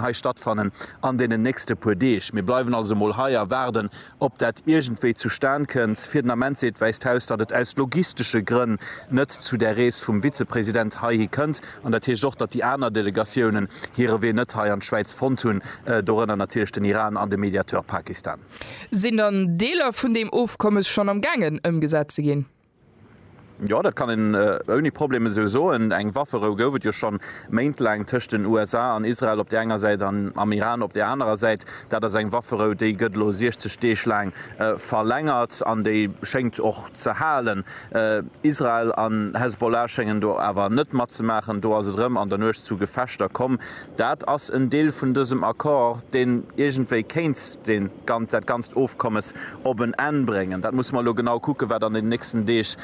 hei stattfannen an deenen nächste puer Deeg. Mir bleiwen also emol hei a waarden, ob dat iergendwéi zustan kënnt. Fir den Ament seet d'Wäisst Haus, datt et aus logistesche Grënn net zu där Rees vum Vizepresident heihi kënnt. An dat heescht och, datt déi aner Delegatiounen hire Wee net hei an d'Schwäiz fonnt hunn, dorënner natierlech den Iran an de Mediateur Pakistan. Sinn dann Deeler vun deem Ofkommes schonn am gaangen ëmgesat ze ginn? Jo, dat kann een ouni Problem esou soen. Eng Wafferou gouf et jo schonn méintlaang tëscht den USA an Israel op där enger Säit an am Iran op där anerer Säit. Dat ass eng Wafferou, déi gëtt elo 60 Deeg laang verlängert an déi schéngt och ze halen. Israel an Hezbollah schéngen do awer net matzemaachen. Do ass et erëm an der Nuecht zu Gefechter komm. Dat ass en Deel vun dësem Accord, deen iergendwéi kéint dat ganzt Ofkommes op en Enn bréngen. Dat musse mer elo genau kucken, wat an den nächsten Deeg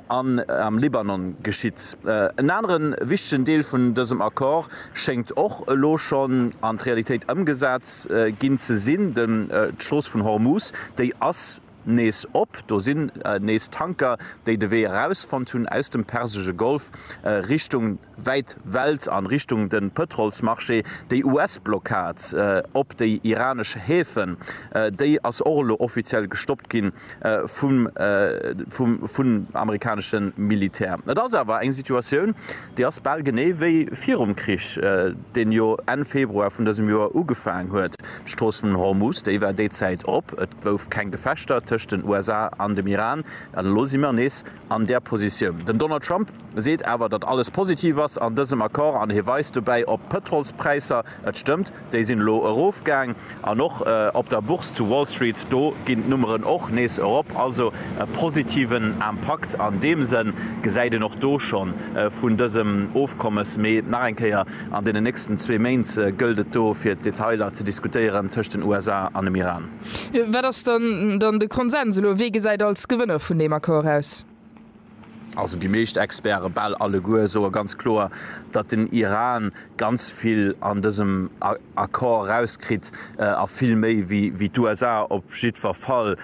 am Libanon geschitt. En anere wichtegen Deel vun dësem Accord schéngt och elo schonn an d'Realitéit ëmgesat ginn ze sinn, D'Strooss vun Hormuz, déi ass nees op. Do sinn nees Tanker, déi de Wee erausfonnt hunn aus dem persesche Golf Richtung. wäit Welt an Richtung den Pëtrolsmarché. Déi US-Blockad op déi iranesch Häfen, déi ass och elo offiziell gestoppt ginn vum amerikanesche Militär. Et ass awer eng Situatioun, déi ass bal genee wéi virum Krich, deen jo Enn Februar vun dësem Joer ugefaang huet. D'Strooss vun Hormuz, déi war déi Zäit op, et gouf keng Gefechter tëscht den USA an dem Iran, an elo si mer nees an där Positioun. Den Donald Trump seet awer, datt alles positiv ass an dësem Accord an hie weist dobäi op d'Pëtrolspräisser, et stëmmt, déi sinn elo erofgaang an och op der Bourse zu Wall Street, do ginn d'Nummeren och nees erop. Also e positiven Impakt an deem Sënn gesäit een och do scho vun dësem Ofkommes. Mee nach eng Kéier, an deenen nächsten zwee Méint gëllt et do fir d'Detailer ze diskutéieren tëscht den USA an dem Iran. Wat ass dann de Konsens elo? Wee gesäit als Gewënner vun deem Accord aus? Also déi meescht Experte, bal alleguer, soe ganz kloer, datt den Iran ganz vill an dësem Accord erauskritt a vill méi wéi d'USA op jiddwer Fall.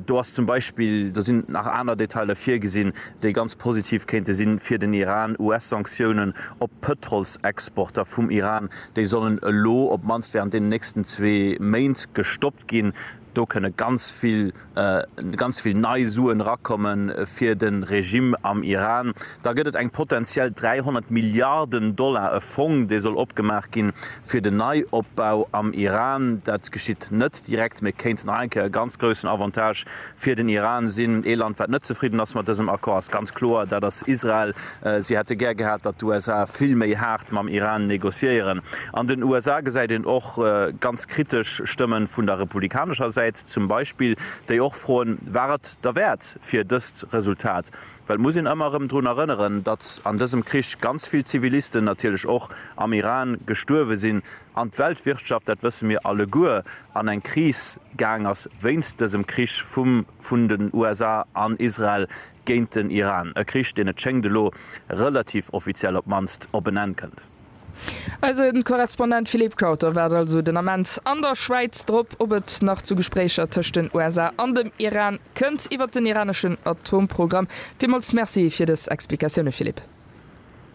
Do ass zum Beispill, do sinn nach aner Detailer virgesinn, déi ganz positiv kéinte si fir den Iran, US-Sanktiounen op d'Pëtrolsexporter vum Iran Déi sollen elo op d'mannst während deenen nächsten zwee Méint gestoppt ginn. Do kënne ganz vill, ganz vill nei Suen erakommen fir de Regime am Iran. Da gëtt et eng potentiell 300 Milliarden Dollar, e Fong, dee soll opgemaach ginn fir den Neiopbau am Iran. Dat geschitt net direkt, mee kéint nach eng Kéier e ganz groussen Avantage Fir den Iran sinn. Ee Land, wat net zefridden ass mat dësem Accord, ass ganz kloer, dat ass Israel. Si hätte gär gehat, datt d'USA vill méi haart mam Iran negociéieren. An den USA gesäit een och ganz kritesch Stëmme vun der republikanescher Säit zum Beispill, déi och froen, War et derwäert fir dëst Resultat? Well et muss een ëmmer erëm drun erënneren, datt an dësem Krich ganz vill Zivilisten natierlech och am Iran gestuerwe sinn, an d'Weltwirtschaft, dat wësse mir alleguer, an eng Kris gaang ass wéinst dësem Krich vum vun den USA an Israel géint den Iran, e Krich, deen et schéngt elo relativ offiziell op d'mannst op en Enn kënnt. Eise Korrespondent Philippe Kauter waart also den Ament an der Schwäiz drop, ob et nach zu Gespréicher tëscht den USA an dem Iran kënnt iwwert den iraneschen Atomprogramm. Villmools Merci fir dës Explikatioune Philippe.